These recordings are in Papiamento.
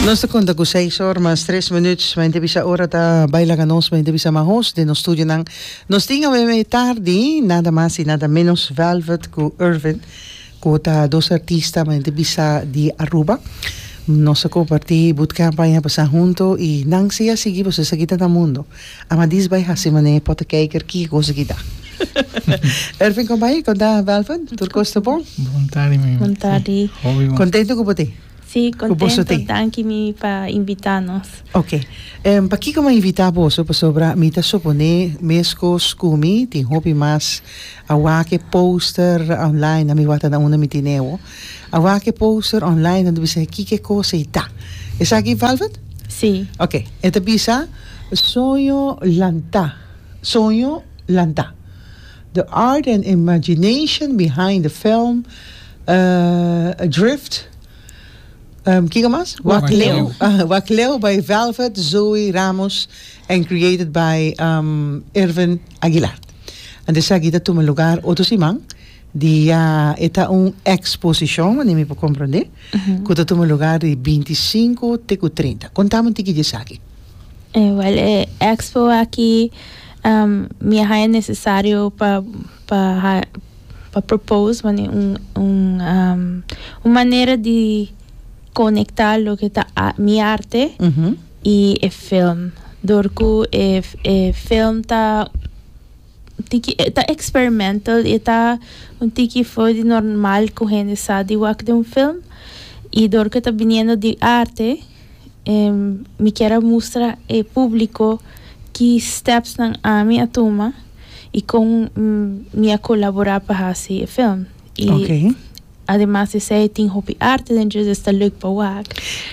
Nos ta konta ku seis or mas tres minut. Mi ta bisa ora ta bai laga nos. Mi ta bisa ma host den nos studionan nos tin awe e tardi nada mas i nada menos Velvet ku Ervin ku ta dos artista mi ta bisa di Aruba. Nos a komparti Bootcamp aña pasa huntu i nan si a sigui pues esaki ta na mundo. Amadis bai hasi manera e pota kijker kiko kosa ki ta. Ervin kon bai konta Belvin tur kos ta bon? Bon tardi mi. Bon tardi. Hopi bon. Kontento ku bo te? Si kontento danki mi pa invita nos. Ok pa kiko mi a invita boso pasobra mi ta supone meskos ku mi tin hopi mas a wak e poster online na mi wak ta na unda mi tin ewo. A wak e poster online en ta bisa e kiko e cosa i ta. Esaki Velvet? Sí. Ok, e ta bisa Soño lanta, soño lanta. The art and imagination behind the film uh Adrift um kiko mas? Wak Leu. Wak Leu by Velvet Zoe Ramos and created by um Irvin Aguilar. And esaki ta tuma lugar otro siman Dia e ta un eksposishon, manera mi por komprondé, ku ta tuma lugar di bintisinko te ku trinta. Kontamu un tiki di esaki. Wèl, e ekspo aki mi a haña nesesario pa pa pa propose manera un un manera di konektá loke ta mi arte i e film dor ku e film ta tiki e ta experimental e ta un tiki for di normal cu hende sa di wak den un film y door cu ta biniendo di arte mi kier a mustra e publico ki stepsnan ami a tuma y con mi a colabora pa haci e film y ademas di esey tin hopi arte dentro y esta leuk pa wak.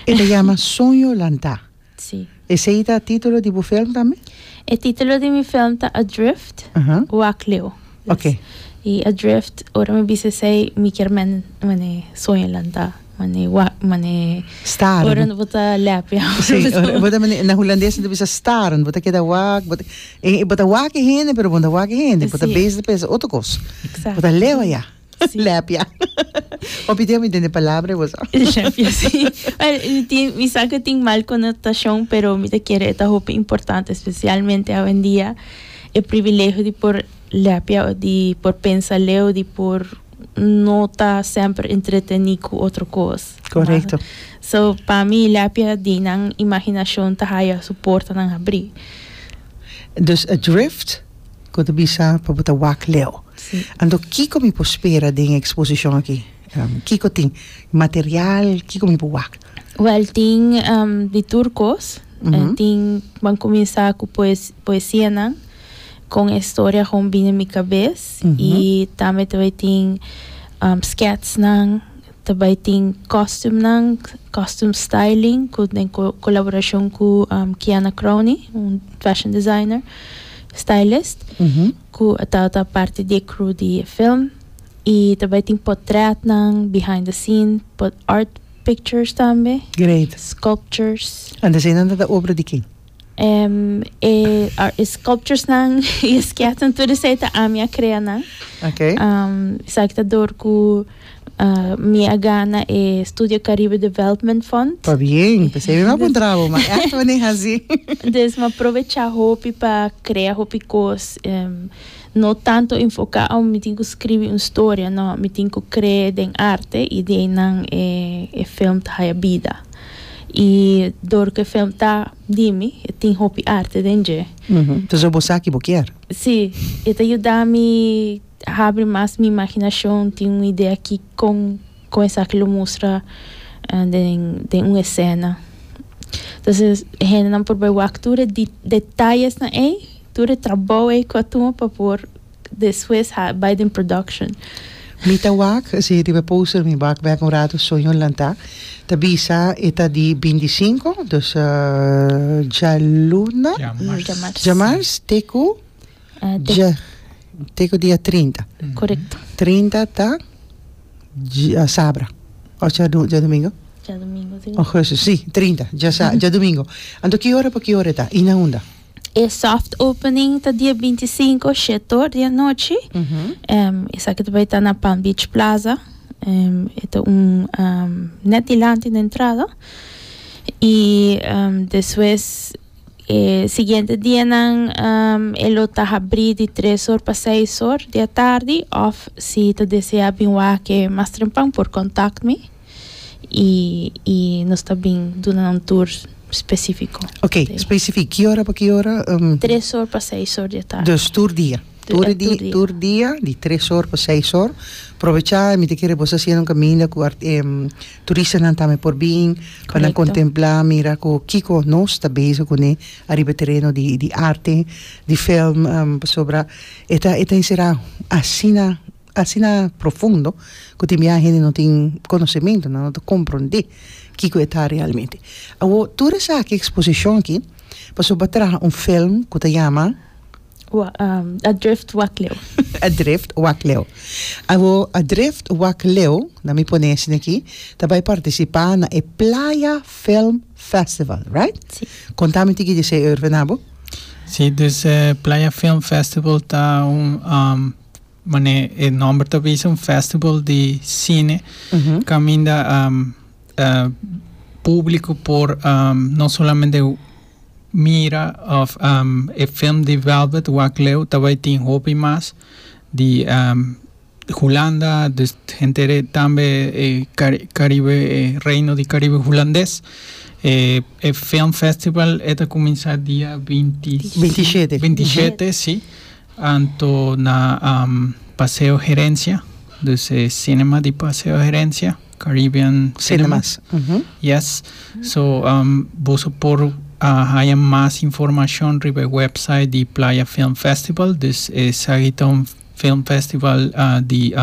E ta yama Soño Lanta. Sí. Esei ta titulo di bu film tambe? E titulo di mi film ta Adrift, Aha. Wak Leo. Yes. Oké. I Adrift, ora mi bisa esei, mi kier men mane soñonan ta mane wa, mane Staren. ora bo ta lèp, ya. Sí, ora bo ta mane, na hulandes nan ta bisa staren, bo ta keda wak, bo ta, e bo ta wak e hende pero bo no ta wak e hende, bo ta Sí. bes di pensa otro kos. Exacto. Bo ta leo ya. Sí. Lèpia. Papi Dios, mi den de palabra vos. Lèpia, sí. Well, mi, tin, mi sa que tin mal connotación, pero mi te quiere eta hopi importante, especialmente hoy en día, el privilegio de por lèpia, de por pensa leo, de por no ta sempre entreteni cu otro cos. Correcto. Ma, so, pa mi lèpia di nan imaginación ta haya su porta nan abri. Dus a drift? Cu ta bisa pa bo ta wak leu. Anto kico mi por spera den e exposicion aki? Kico tin? Material? Kico mi por wak? Wel, tin di tur cos. Tin, ban cuminsa cu poesianan con e historia con bini mi cabes. Y tambe ta bay tin sketsnan. Ta bai tin kostumnan, costume styling, ku den kolaborashon ku Kiana Crony, un fashion designer, stylist, ku e tabata parti di e crew di e film. I ta bai tin potrètnan, behind the scene, art pictures tambe, sculptures. Ant asina nan ta obra di ken? e sculpturesnan i e sketsnan tur esei ta ami a krea nan. Okay. Esaki ta dor ku mi a gana e Studio Caribe Development Fund. Pa bien, p'esei mi a puntra bo, ma echt wanneer hasi? Des mi a provechá hopi pa krea hopi kos. No tanto enfoká oh mi tin ku skribi un storia, no, mi tin ku kree den arte i di einan e e film ta haya bida. I dor ku e film ta di mi, e tin hopi arte den dje. Ta so bo sa ki bo kier. Sí, e ta yuda mi habri mas mi imaginashon, tin un idea ki kon kon esaki lo mustra den den un esena. Entonces e hendenan por bai wak tur e detayesnan ei. Tur e trabou ei cu a tuma pa por despues ha bai den production. Mi ta wak, si riba e poster mi wak bek un rato soño lanta, ta bisa e ta di binti sinku, dus djaluna, djamars, te cu dja, te cu dia trinta, trinta ta dja sabra of ta djadumingu, augustus si trinta dja sa djadumingu, anto ki ora pa ki ora e ta i na unda? E soft opening ta dia binti sinku shetor di anochi. Em, esaki ta bai ta na Palm Beach Plaza. Em, e ta un em, net dilanti na entrada. I em, despues e siguiente dianan em, e lo ta habrí di tres or pa seis or di atardi òf si ta desea bin wak e mas trempan por kòntakt mi. y nos ta bin duna nan tur specifico. Ok, specific, ki ora pa ki ora? Tres or pa seis or di e tardi. Dus tur dia? Tur di, tur dia di tres or pa seis or. Probecha mi ta kere boso haciendo un caminda cu turistanan tambe por bin pa nan contempla mira cu kico nos ta bezig cune ariba e tereno di di arte di film pasobra e ta e ta encera asina Asina profundo cu tin biaha hende no tin conocemento nan no ta comprende kico e ta realmente. Awo tur esaki exposicion aki pasobra traha un film cu ta yama. Adrift Wak Leu. Adrift Wak Leu. Awo Adrift Wak Leu, na mi pone asina aki, ta bay participa na e Playa Film Festival, right? Si. Conta mi tiki di esey Ervin abo. Si, dus e Playa Film Festival ta un Mane e nomber ta bisa un festival di cine caminda publico por no solamente mira of e film di Velvet wak leu ta bay tin hopi mas di Hulanda dus henter tambe e caribe e reino di caribe hulandes e film festival e ta cuminsa dia binti binti shete binti shete si Anto na Paseo Herencia, dus e cinema di Paseo Herencia, Caribbean Cinemas. Yes. So, boso por a haya mas informacion riba e website di Playa Film Festival, dus esaki ta un film festival di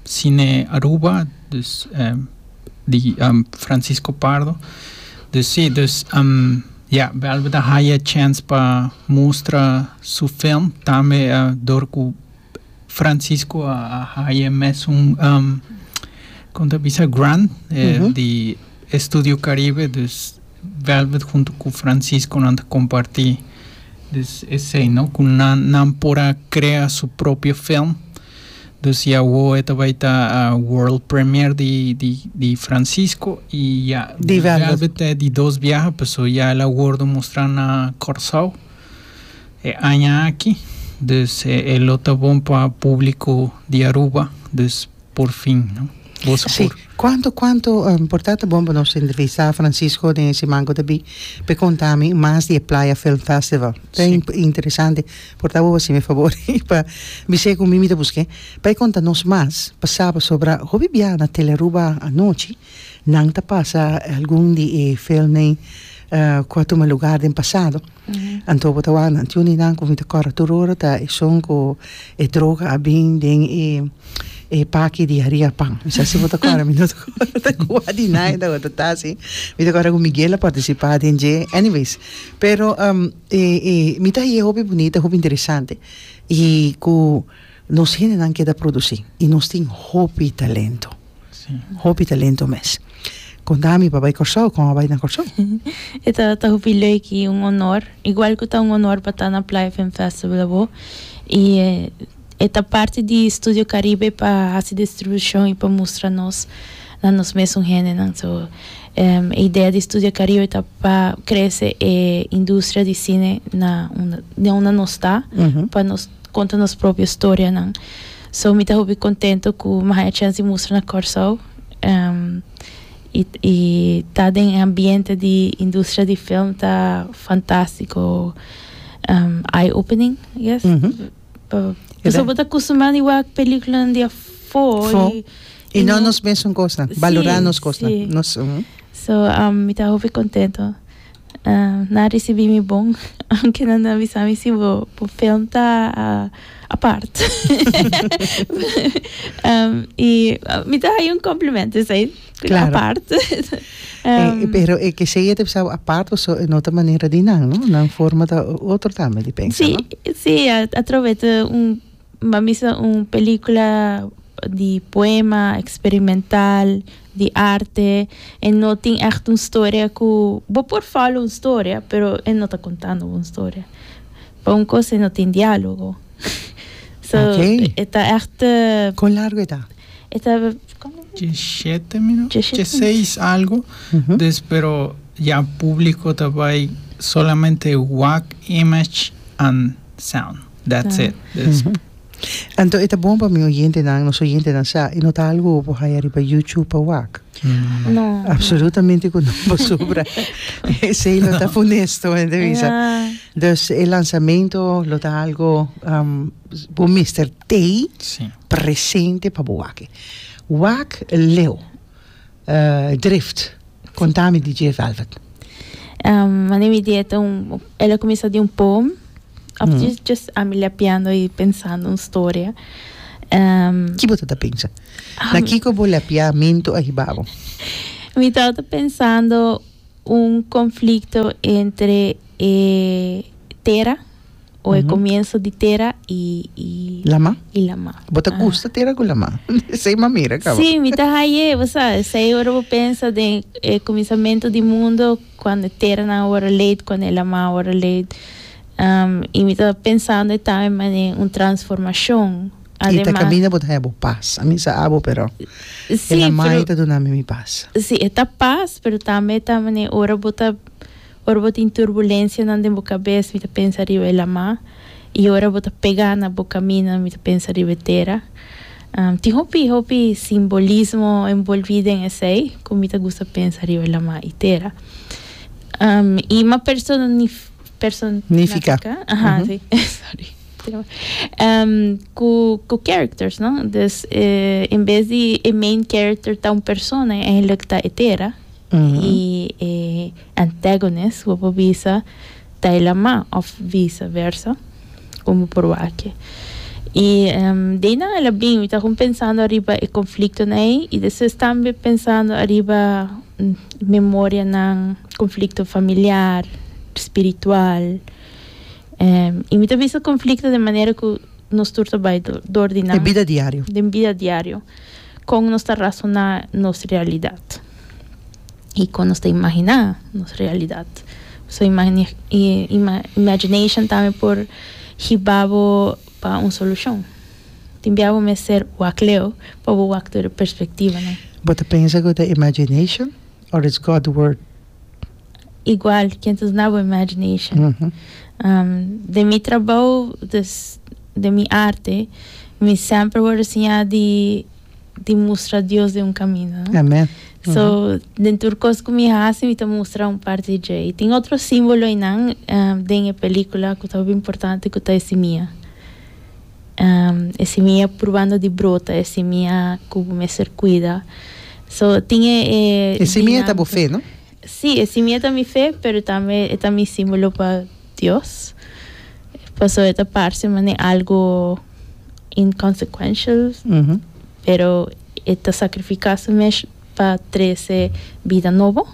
cine Aruba, dus e. di Francisco Pardo dus si dus ya Belvit a haya e chance pa mustra su film tambe dor cu Francisco a haya e mesun con ta bisa grant di Estudio Caribe dus Belvit hunto cu Francisco nan ta comparti dus esey no cu nan por a crea su propio film. Dus y awo e ta bai ta world premier di di di Francisco y ya di Velvet ta e di dos biaha paso ya el a wordo mustra na Corsou e aña aki dus e lo ta bon pa publico di Aruba dus por fin no bo su por. Si cuanto cuanto por ta ta bon pa nos entrevista Francisco den e siman cu ta bin pe conta mi mas di e Playa Film Festival ta interesante. Por ta bo hasi mi e fabor i pa bis'é ku mi mi ta busk'é pa e konta nos mas pa sa pasobra hopi bia na Tele Aruba anochi nan ta pasa algun di e filmnan ku a tuma lugar den pasado anto bo ta wak nan un di nan ku mi ta kòrda tur ora ta esun ku e droga a bin den e e paki di Haria Pan mi sa si bo ta kòrda mi no ta kòrda kua di nan e tabata ta si mi ta kòrda ku Miguel a partisipa den dje anyways pero. E e mi ta hie hopi bunita hopi interesante y cu nos hendenan keda produci y nos tin hopi talento hopi talento mes con ta ami pa bay Corsou con a bay na Corsou. E ta ta hopi leuk y un honor igual cu ta un honor pa ta na Playa Film Festival abo y e ta parti di Studio Caribe pa haci distribucion y pa mustra nos na nos mesun hendenan. So, e idea di Studia Caribe ta pa crece e industria di cine na unda, na unda nos ta, pa nos conta nos propio storianan. So, mi ta hopi contento cu mi a haya chance di mustra na Corsou, y, y ta den e ambiente di industria di film ta fantastico, eye-opening, I guess. Pasobra bo ta custa mas di wak películanan di afo. Fo. Y no nos mesun cosnan. Sí, Valorá nos cosnan. sí. Nos, ujú. So, um, mi ta hopi contento. Um, nan a ricibi mi bon, aunque nan a bisa mi si bo, bo film ta a- apart. um, y mi ta haña un complemento esei. Tin Claro. apart. Eh, Ehm, pero e que sea te pensaba apart o so en otra manera di nan, no? Nan forma ta otro tambe di pensa, Sí, no? sí, a, a través de un, a misa un película di poema experimental, di arte, e no tin echt un storia cu, bo por follow un storia, pero e no ta contando bo un storia. Pa un cos e no tin dialogo. so, Ok. e ta echt, eh, Con largo e ta? E ta. Diecisiete mino, dieciseis algo des pero ya publico ta bay solamente wak, image and sound that's it des. Anto e ta bon pa mi oyentenan, nos oyentenan sa e no ta algo por haya riba YouTube pa wak. No. Absolutamente cu no pasobra esey lo ta funesto mi ta bisa. Dus e lanzamento lo ta algo bo mester tey Presente pa bo wak. Wak leu drift. Konta mi di dje Velvet. Mane mi di e ta un el a kuminsá di un poem òf djes djes ami lèpiando i pensando un storia. Ki bo ta ta pensa? Na kiko bo lèpiamentu a hiba bo? Mi tabata pensando un konflikto entre e tera o e comienso di tera y y lama y lama bo ta gusta tera cu lama esey mamera caba si mi ta haye bo sa esey ora bo pensa den e cuminsamento di mundo cuando e tera nan awor a leed cuando e lama awor a leed um y mi ta pensando e tame mane un transformacion ademas y ta camina bo ta haye bo paz ami sa abo pero si e lama ta dunami mi paz si e ta paz pero tambe ta mane ora bo ta Ora bo tin turbulencianan den bo cabes, mi ta pensa riba e lama, y ora bo ta pega na bo caminan, mi ta pensa riba e tera. Tin hopi, hopi simbolismo envolvi den esey, cu mi ta gusta pensa riba lama y tera. Y ma personifica, cu characters, no? Dus, en bes di e main character ta un persona, e eindelijk ta e tera. y e antagonist bo por bisa ta e lama of vice versa con bo por wak-e. Y de nan a la bin mi ta con pensando ariba e conflictonan ey y despues tambe pensando ariba memorianan, conflicto familiar, spiritual y mi ta bisa conflicto de manera cu nos tur ta bay dor di nan. Den bida diario. Den bida diario. Kon nos ta rasoná nos realidat i kon nos ta imaginá nos realidat. So, imagination tambe por hiba bo pa un solushon. Tin bia bo mester wak Leo pa bo wak tur e perspektivanan. Bo ta pensa ku ta imagination òf it's God word? igual can't is not with imagination. Mm -hmm. um, de mi trabou, des, de mi arte, mi sempre word enseña di, di mustra Dios de un camino. No? Amen. So, mm -hmm. den tur cos cu mi hace, mi ta mustra un parte di Jay. Tin otro símbolo inan um, den e película cu ta importante cu ta e simia. e simia purbando di brota e simia ku bo mester kuida so tin e dinamika. E simia ta bo fe no? Si e simia ta mi fe pero tambe e ta mi simbolo pa Dios paso e ta parse manera algo inconsecuential pero e ta sacrifica su mes pa trese bida nobo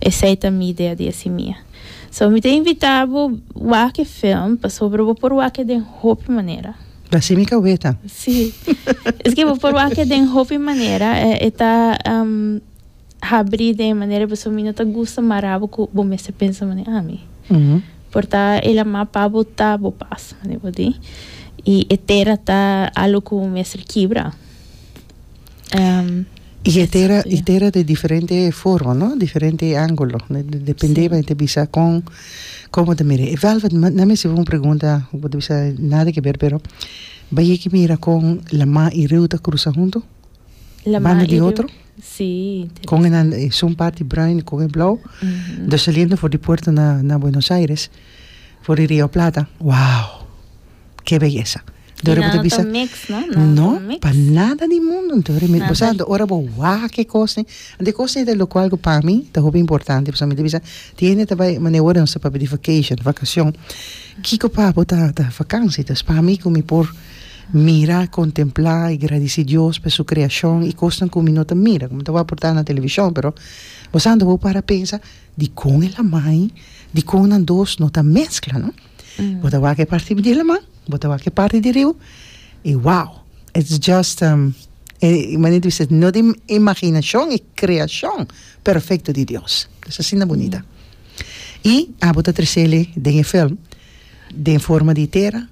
esei ta mi idea di e simia. So mi ta invita bo wak e film pasobra bo por wak e den hopi manera. Ta así mi kaweta. Sí. Esaki bo por wak e den hopi manera. E ta habri den e manera pasobra mi no ta gusta mara bo ku bo mester pensa manera ami. Por ta el a ma pa bo ta bo pas manera bo di. I e tera ta algo ku bo mester kibra. Ehm. Y e tera, y tera de diferente forma, no? Diferente angulo. Dependeba e ta bisa con, como ta mira. Velvet, nan mester haci un pregunta, bo ta bisa nada que ver, pero bayé ki mira con Lamá y Riu ta crusa hunto? Lamá y Riu. Banda di otro? Sí. Con e nan, e sun parti bruin y con e blauw. Dos saliendo for di puerto na, na Buenos Aires, for di Rio Plata, wow! Ke beyesa. Entonces bo ta bisa. No, pa nada di mundo. Entonces bo sa ora bo waha ke kosnan. Anto e kosnan ta loke algo pa mi ta hopi importante pasobra mi ta bisa tin hende ta bai mane woorden sa papia di vacation, vakacion. Kiko pa bo ta vakansi? Entonces pa mi ku mi por mira, kontempla i gradisi Dios pa su kreashon i kosnan ku mi no ta mira, ku mi ta wak por ta na televishon pero bo sa anto bo para pensa dikon el a mai, dikon nan dos no ta meskla no? Bo ta wak e parti di laman, bo ta wak e parti di riba i wow! It's just um e manera di bisa no di imaginashon e kreashon perfekto di Dios. Es asina bunita. I abo ta tresele den e film den forma di tera,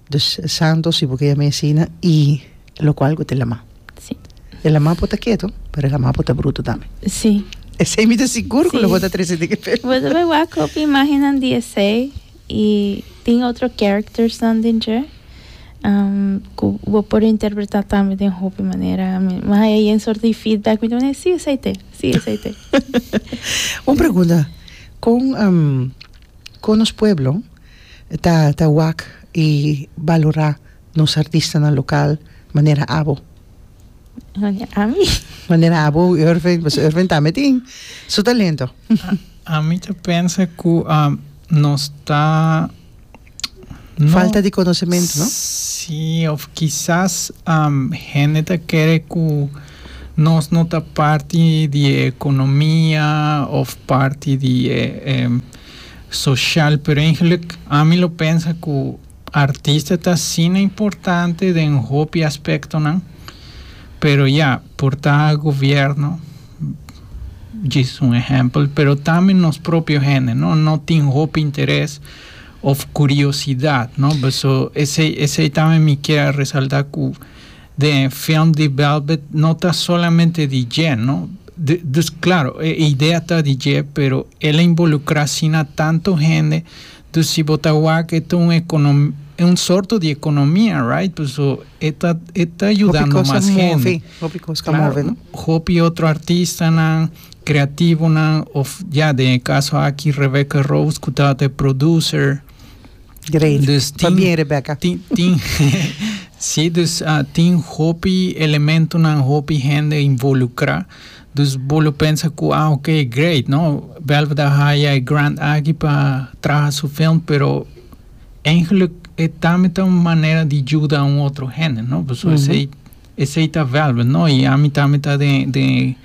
Dus e santo si bo ke yam'é asina i lo kual ku ta lamá. Sí. E lamá por ta ketu, pero e lamá por ta brutu tambe. Sí. Esei mi ta sigur ku lo Sí. bo ta trese den e film. Bo ta bai wak ku hopi imágennan di esei i tin otro charactersnan den dje ku bo por interpretá tambe den hopi manera. Mi mas haya yen sort di feedback mi ta manda, sí esei t'e, sí esei t'e. Un pregunta, kon Con nos pueblo ta ta wak y balora nos artistanan local manera abo? Manera ami. Manera abo y Ervin, pasobra Ervin tambe tin su talento. Ami ta pensa cu nos ta no. Falta di conocemento, no? Si, of kisas hende ta kere cu. Nos no ta parti di e economia of parti di e social pero eigenlijk ami lo pensa cu artista ta asina importante den hopi aspectonan pero ya por ta gobierno djis un ehempel pero tambe nos propio hende no no tin hopi interes of curiosidad no beso esey esey tambe mi kier resalta cu. Den e film di Velvet no ta solamente di dje no, dus claro e idea ta di dje pero el a involucra asina tanto hende, dus si bo ta wak e ta un econom un sorto di economia right paso e ta e ta yudando mas hende, claro hopi otro artistanan, creativonan of ya den e caso aki Rebecca Rose cu tabata e producer. Great. Dus tin, pa bien Rebecca. Tin, tin si, dus uh, tin hopi elementonan, hopi hende involucra. Dus bo lo pensa cu, ah, ok, great, no? Belveda haya e grant aki pa traha su film, pero eigenlijk e tambe ta un manera di juda un otro hende, no? Pasobra mm -hmm. Esey ta vèrber, no? I ami ta ami ta den den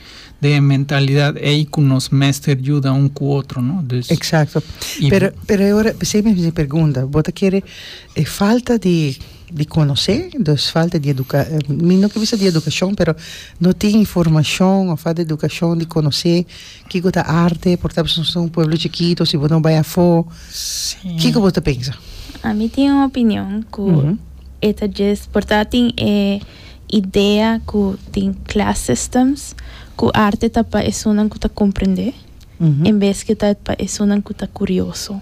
den e mentalidad ey cu nos mester yuda un cu otro, no? Dus. Exacto. I. Pero pero e ora pesey mi hasi pergunta, bo ta kere e falta di di conoce, dus falta di educa mi no quier bisa di educacion pero no tin informacion of falta di educacion di conoce kico ta arte por esempel si nos ta un pueblo chikito si bo no bay afo, kico bo ta pensa? Ami tin un opinion cu. e ta djes por ta tin e idea ku tin class systems ku arte ta pa esunnan ku ta komprendé en bes ku ta pa esunnan ku ta kurioso.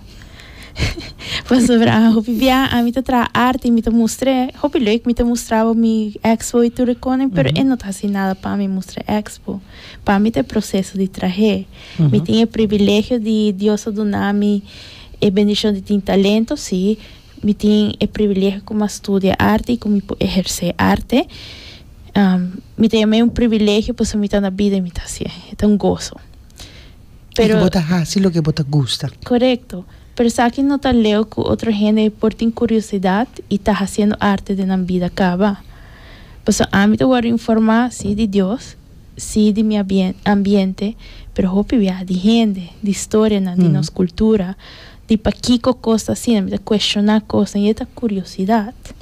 Pasobra hopi bia ami ta traha arte i mi ta mustr'é hopi lek, mi ta mustra bo mi expo i tur e konen pero e no ta hasi nada pa mi mustra expo. Pa mi ta e proseso di trah'é. Mi tin e privilegio di Dios a duna mi e bendishon di tin talento, sí, Mi tin e privilegio cu ma studia arte y cu mi por eherce arte. Mi ta yama e un privilegio pasobra mi ta na bida y mi ta haci e. E ta un gozo. Y cu bo ta haci loke bo ta gusta. Corecto. Pero esaki no ta leu cu otro hende por tin curiosidad y ta haciendo arte den nan bida caba. Pasobra ami ta wordo informa si di Dios, si di mi ambiente, pero hopi bia di hende, di historianan, di nos cultura. di pakiko kos ta asina, mi ta kueshoná kosnan, i e ta kuriosidat.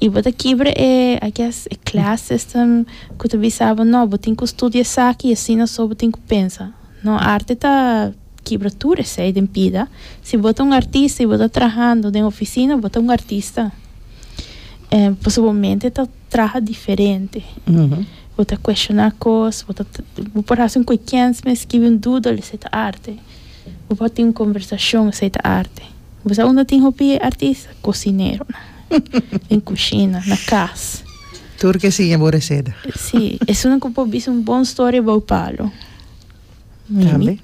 I bo ta kibra e, I guess, e class system ku ta bisa bo, no, bo tin ku studia esaki i asina so bo tin ku pensa. No, arte ta kibra tur esei den bida. Si bo ta un artista i bo ta trahando den ofisina, bo ta un artista. Pasobra bo mente ta traha diferente. Bo ta kueshoná kos, bo ta, bo por hasi un kuekenns mes, skibi un dudel, esei ta arte. Bo por tin un conversacion esey ta arte. Bo sa unda tin hopi artista? Cocineronan den cushina, na cas. Tur ke siña bo receta. Si, esunnan cu por bisa un bon storia bou palo. Tambe.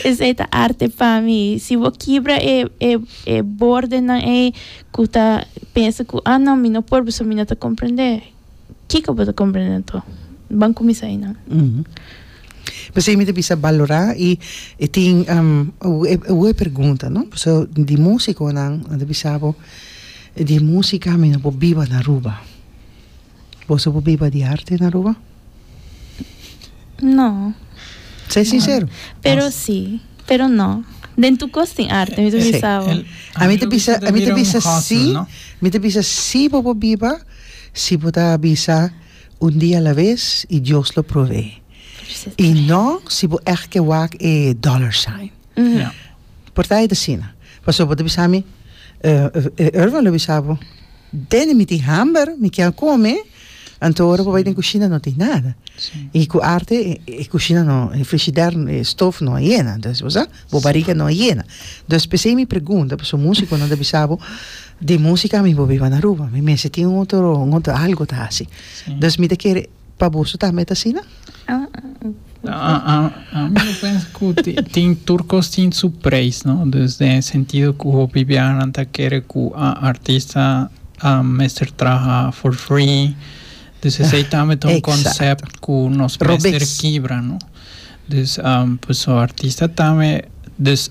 Esey ta arte pa mi. Si bo kibra e e e bordenan ey cu ta pensa cu ah no mi no por pasobra mi no ta comprende. Kiko bo ta comprende anto? Ban cuminsa einan. P'esei mi ta bisa balora i e tin hu e pergunta, no? Paso di musiconan nan ta bisa bo di musica mi no por biba na Aruba. Bo su por biba di arte na Aruba? No. Sei sincero. Pero si, pero no. Den tur cos tin arte, mi ta bisa bo. Ami ta bisa, ami ta bisa si, mi ta bisa si bo por biba. Si bo ta bisa un dia a la vez y Dios lo prove. Y no si bo echt ke wak e dollar sign. Por ta ait asina. Pasobra bo ta bisa mi, e Irvin lo bisa bo, Danny mi tin hamber, mi kier come, anto ora bo bai den cushina no tin nada. Y cu arte e cushina no, e frishider, e stof no a yena. Entonces bo sa. Bo bariga no a yena. Dus pesey mi pregunta, paso musiconan ta bisa bo, di musica mi bo biba na Aruba, mi mester tin un otro, un otro algo ta haci. Dus mi ta kere, pa boso tambe ta asina? Ami lo pensa cu tin, tur cos tin su prijs, no? Dus den e sentido cu hopi biahanan ta kere cu artista mester traha for free, dus esey tambe ta un concept cu nos mester kibra, no? Dus paso artista tambe dus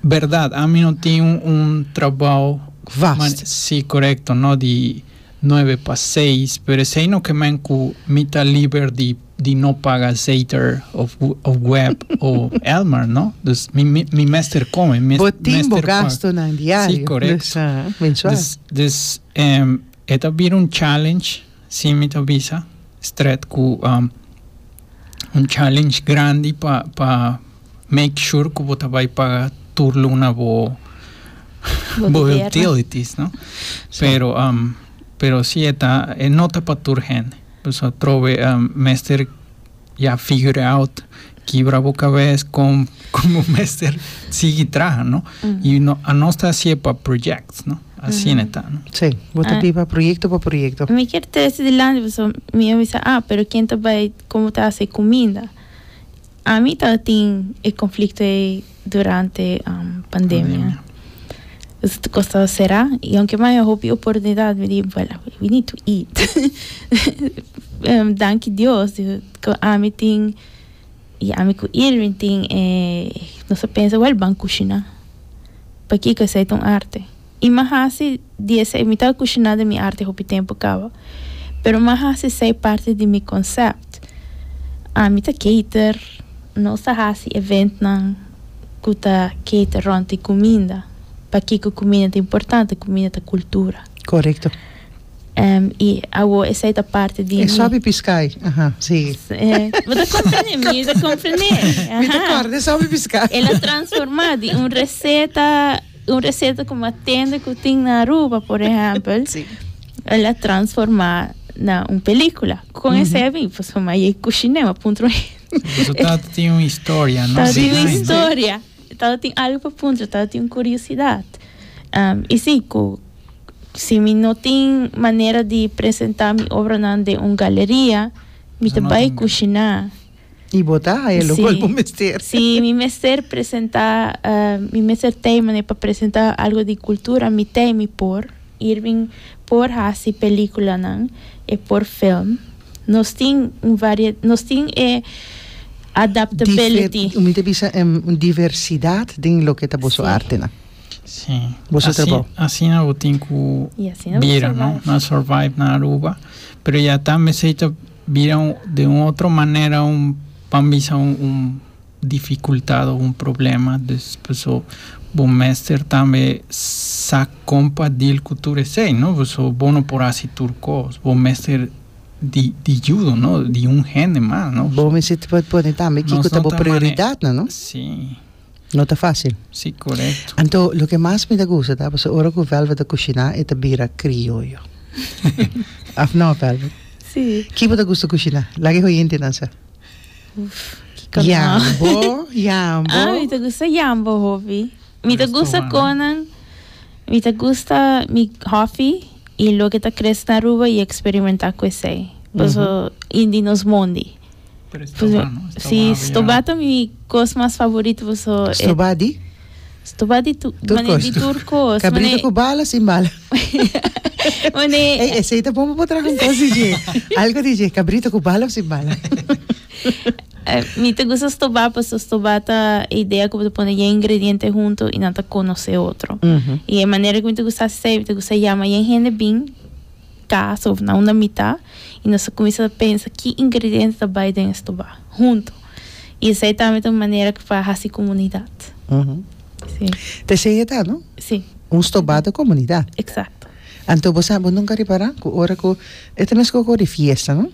berdad ami no tin un trabao vast si correcto no di nuebe pa seis pero esey no ke men cu mi ta liber di di no paga zeiter of of web o elmer no dus mi mi mester come mi mester paga bo tin bo gasto nan diario si correcto dus dus eta bira un challenge Si mi ta bisa stret cu un challenge grandi pa pa make sure cu bo ta bay paga tur luna bo bo utilities no pero pero si e ta e no ta pa tur hende pasobra trobe mester ya figure out Kibra bo kabes kon kon bo mester sigui traha, no? Y no anos ta haci'e pa project, no? Asina ta, no? Sí, bo ta di pa proyecto pa proyecto. Mi kier trece dilanti pasobra mi a bisa, ah, pero ken ta bay kon bo ta haci cuminda? Ami tabatin e conflicto ey durante pandemia. Pasobra tur cos taba cera y aunke mi a haña hopi oportunidad mi di, bueno, we need to eat. Danki Dios cu ami tin. Y ami cu Irving tin e, nos a pensa, Wel, ban cushina. Pakico esey ta un arte. Y m'a haci di esey, mi tabata cushina den mi arte hopi tempo caba, pero m'a haci esey parti di mi concept. Ami ta cater, nos ta haci eventnan cu ta cater rond di cuminda. Pakico cuminda ta importante? Cuminda ta cultura. Corecto. i awo esei ta parti di mi. E sobi piskai, aha, sigui. Bo ta komprendé? Mi ta komprendé, aha. Mi ta kòrda e sobi piskai. El a transformá di un reseta, un reseta ku m'a tende ku tin na Aruba, por ehèmpel, el a transformá na un pelíkula. Kon esei a bin? Pues p'amá i e kushiné, m'a puntrá un. Resultado tin un historia, no? Ta bin un historia. Tabata tin algo pa puntra, tabata tin un curiosidad. Y si, cu si mi no tin manera di presenta mi obranan den un galeria, mi ta bay cushina. Y bo ta haya lugar bo mester. Si mi mester presenta, mi mester tey manera pa presenta algo di cultura, mi tey, mi por. Irving por haci peliculanan, e por film. Nos tin un varie, nos tin e adaptability. Dife, mi ta bisa em un diversidat den loke ta boso Sí. artenan. Sí. Boso Asi- trabou. Asina bo tin ku Y así no bira, no? survive. No a survive na Aruba. Pero ya tambe esei ta bira un- den un otro manera un, pan bisa un, un dificultad o un problema dus paso bo mester tambe sa con pa deal cu tur esey no paso bo no por haci tur cos bo mester di di judo no di un hende mas no Bo mester por pone tambe kico ta bo prioridadnan no si no ta facil si corecto anto loke mas mi ta gusta ta paso ora cu Velvet ta cushina e ta bira crioyo of no Velvet si ki bo ta gusta cushina laga e hoyentenan sa. Jambo, jambo. Ah, mi ta gusta jambo hopi. Mi ta gusta conan. Mi ta gusta mi hopi y lo que ta crece na Aruba y experimenta cu esey. Paso in di nos mondi. Pero estoba no, estoba hopi. Sí, estoba ta mi cos mas favorito paso. Estoba di? Stupa di tur tur cos. Di tur cos. Cabrito cu bala sin bala. Ey, ese te bon pa traha un cos DJ. Algo DJ, cabrito cu bala of sin bala. Mi te gusta stoba, paso stoba ta idea cu te pone yen ingrediente hunto y nan ta conoce otro. Mm -hmm. Y e manera cu mi te gusta asesei, mi te gusta llama yen hende bin casa of na una mita y nos comienza pensa ki ingrediente ta bay den stoba hunto. Y esey tambe ta un manera pa haci comunidad. Si. Ta esey e ta, no? Si. Un stobado di comunidad. Exacto. Anto bo sa, bo nunca a repara cu ora cu, e ta mesco cu di fiesta, no?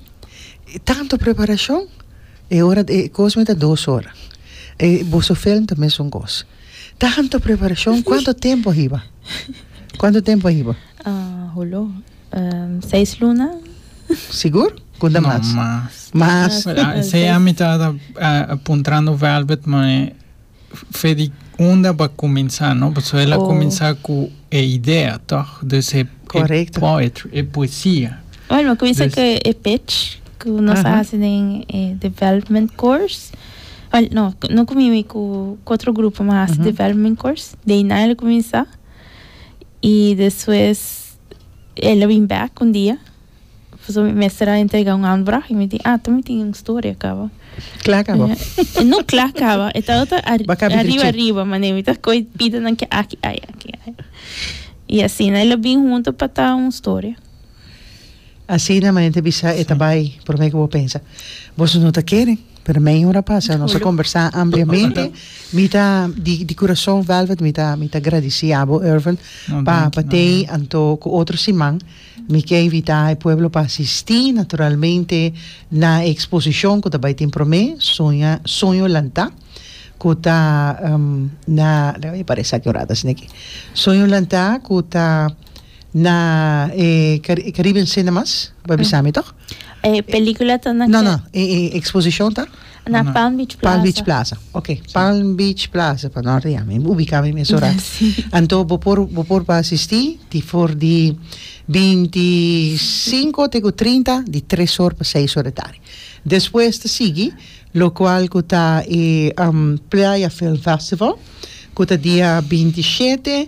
Tanto preparacion, e ora, e cos mey ta dos ora. E boso film ta mesun cos. Tanto preparacion, cuanto tempo a hiba? Cuanto tempo a hiba? Hulo, seis luna. Sigur? Kunda mas? No, mas. Mas? Esei ami ta puntrando Velvet manera Fedi unda bo a kuminsá, no? Paso el a kuminsá ku e idea, tòg? Dus e poetry, e poesia. Buen, bo a kuminsá ku e pitch ku nos a hasi den e development course. Buen, no, no ku mi, mi ku otro grupo mi a hasi development course. De ahí nan el a kuminsá. y despues ella bin back un dia pasobra mi mester a entrega un aanvraag y mi di ah mi tin un storia caba Cla caba. no cla caba e tabata ariba ariba mane mi ta coge pidenan aki ay aki ay y asina ella bin hunto pa ta un storia. Asina mane ta bisa e ta bai prome ku bo pensa boso no ta kere pero mei ora pasa nos a kombersá ampliamente mi ta di di kurason velvet mi ta mi ta gradisí abo Ervin pa pa tei anto ku otro siman mi ke invitá e pueblo pa asistí naturalmente na e eksposishon ku ta bai tin prome soña soño lantá ku ta na parese akeorad ta sina aki soño lantá ku ta. Na e Caribe ncc namas bo a bisa mi toch? E pelicula ta na. No no e e exposicion ta? Na Palm Beach Plaza. Palm Beach Plaza ok Palm Beach Plaza pa no ria mi ubica mi mesun rato anto bo por bo por pa asisti di for di binti singko te ku trinta di tres or pa seis or di tardi despues ta sigui lo cual ku ta e Playa Film Festival ku ta dia binti shete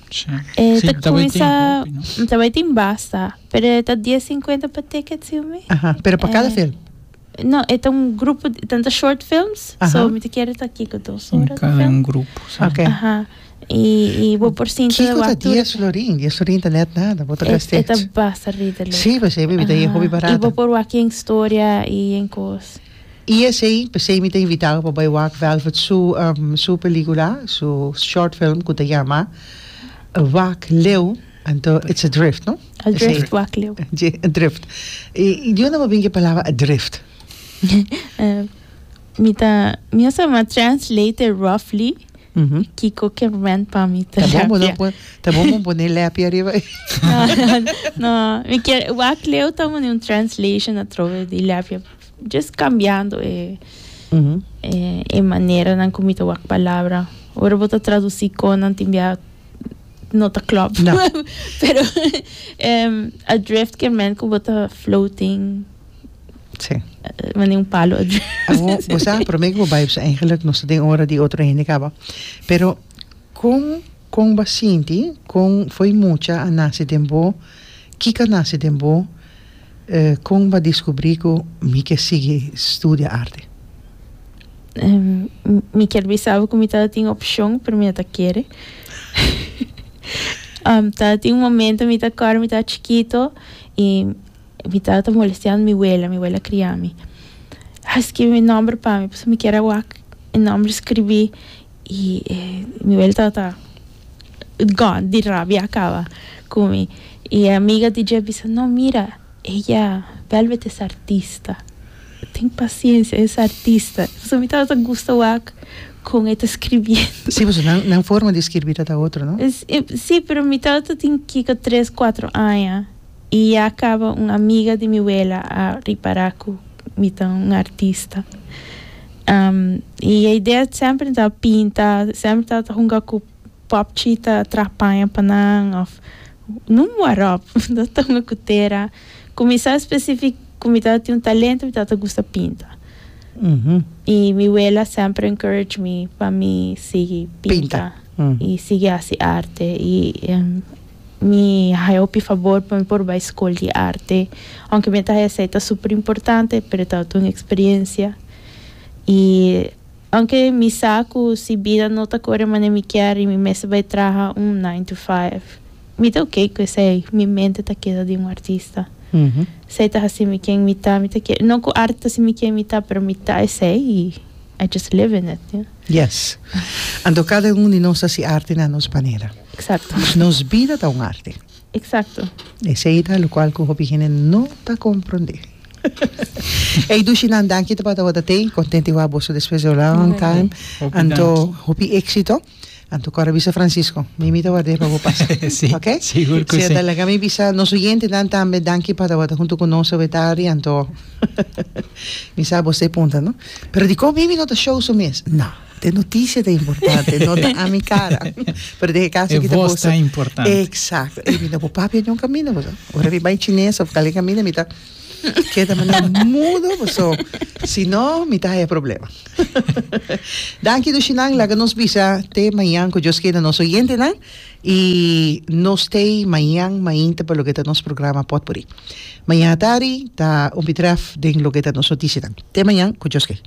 E ta cuinsa ta bay tin basta pero e ta dies cincuenta per ticket siu mi. Aha, pero pa cada film? No, e ta un grupo di, tanta short films, Aha. so mi ta kere ta kiko dos ora di Cada un film. grupo. sa. Okay. Aha, y y bo por sinta de Kiko ta wak tur dies florin, dies florin ta net nada, bo ta e, e ta gasterd. basta ridelik. Sí, pues e mi ta Aha, hopi y bo barato. por wak yen historia y yen cos. I esei p'esei mi ta invit'abo pa bai wak Velvet su su pelikula, su short film ku ta yama Wak Leu, anto it's a drift no? A drift wak leu. Dje, a drift. I di unda bo bin ke palabra a drift? Mi ta mi a sama translate e roughly kiko ke rent pa mi Ta bon bo terapia. no ta bon bo pone lèpia ariba ei. No no no mi kier wak leu ta mandi un translation atrobe di lèpia. Just cambiando e e maneranan cu mi ta wak palabra. Ora bo ta traduci conan tin bia no ta clop. No. Pero em, adrift quiere men cu bo ta floating Sí. eh, wanneer un palo adrift. Amo, vos sabes, para mí que vos vibes eigenlijk nos den ora di otro hende caba. Pero con con va sinti, con foi mucha a nace den bo, kika nace den bo, Kon bo a diskubrí ku mi ke sigui studia arte? Mi kier bisaba ku mi tabata tin opshon, pero mi no ta kere. Tabata tin un momentu mi ta kòrda mi tabata chikitu i mi tabata molesteando mi wela, mi wela kria mi. A skibi mi nòmber pa mi pasobra mi kier a wak e nòmber skribí i mi wela tabata. gòn di rabia a kaba ku mi. I e amiga di dje bisa, No, mira, ella bèlbet es artista. Ten pasiensia, es artista. Pasobra mi tabata gusta wak kon e ta skirbiendo. Sí, pasobra nan, nan forma di skirbí ta ta otro, no? Sí, pero mi tabata tin kiko tres, kuatro aña. I ya caba un amiga di mi wela a ripara cu mi ta un artista. I e idea semper ta pinta, semper ta ta hunga cu popchi ta tra paña pa nan of nun warop ta ta hunga cu tera. Cu mi sa specific cu mi tabatin un talento mi tabata gusta pinta. I mi wela semper encourage mi pa mi sigui pinta i sigui haci arte. Mi haya hopi fabor pa mi por bai Skol di Arte. Aunke mi a ta haya sa e ta super importante, pero e tabata un experiencia. Y aunke mi sa cu si bida no ta core manera mi kier y mi mester bai traha un nine to five, mi ta ok cu esey. Mi mente ta keda den un artista. Esey ta haci mi quien mi ta. Mi ta kier, no cu arte ta haci mi quien mi ta, pero mi ta esey y I just live in it. Yes. Anto kada un di nos ta hasi arte na nos manera. Exacto. Nos bida ta un arte. Exacto. Esei ta locual cu hopi hende no ta comprende. Ey, Dushi, nan danki te pata wata tei. Contenti wa boso despues de long time. Hopi Anto, danki. hopi éxito. Anto, cora bisa Francisco. Mi mi ta ward'é pa bo pasa. Sí, Ok? sigur cu Sea, sí. ta laga mi bisa nos oyentenan tambe danki pata wata hunto cu nos awe tardi. Anto, mi sa bo stay punta, no? Pero dikon Mimi no ta show su mes? Na. E noticia ta importante, no ta ami cara. Pero den e caso aki ta boso. E voz ta importante. Exacto. Ey, mi na bo papia yon camina, boso. Ora mi bay chines of calen camina, mi ta keda manera mudo, boso. Si no, mi ta haya problema. Danki Dushinan, laga nos bisa te mañan cu Dios keda nos oyentenan. Y no stay mañan mainta pa loke ta nos programa Potpourri. Mañan atari ta Unbitref den loke ta nos noticianan. Te mañan cu Dios ke.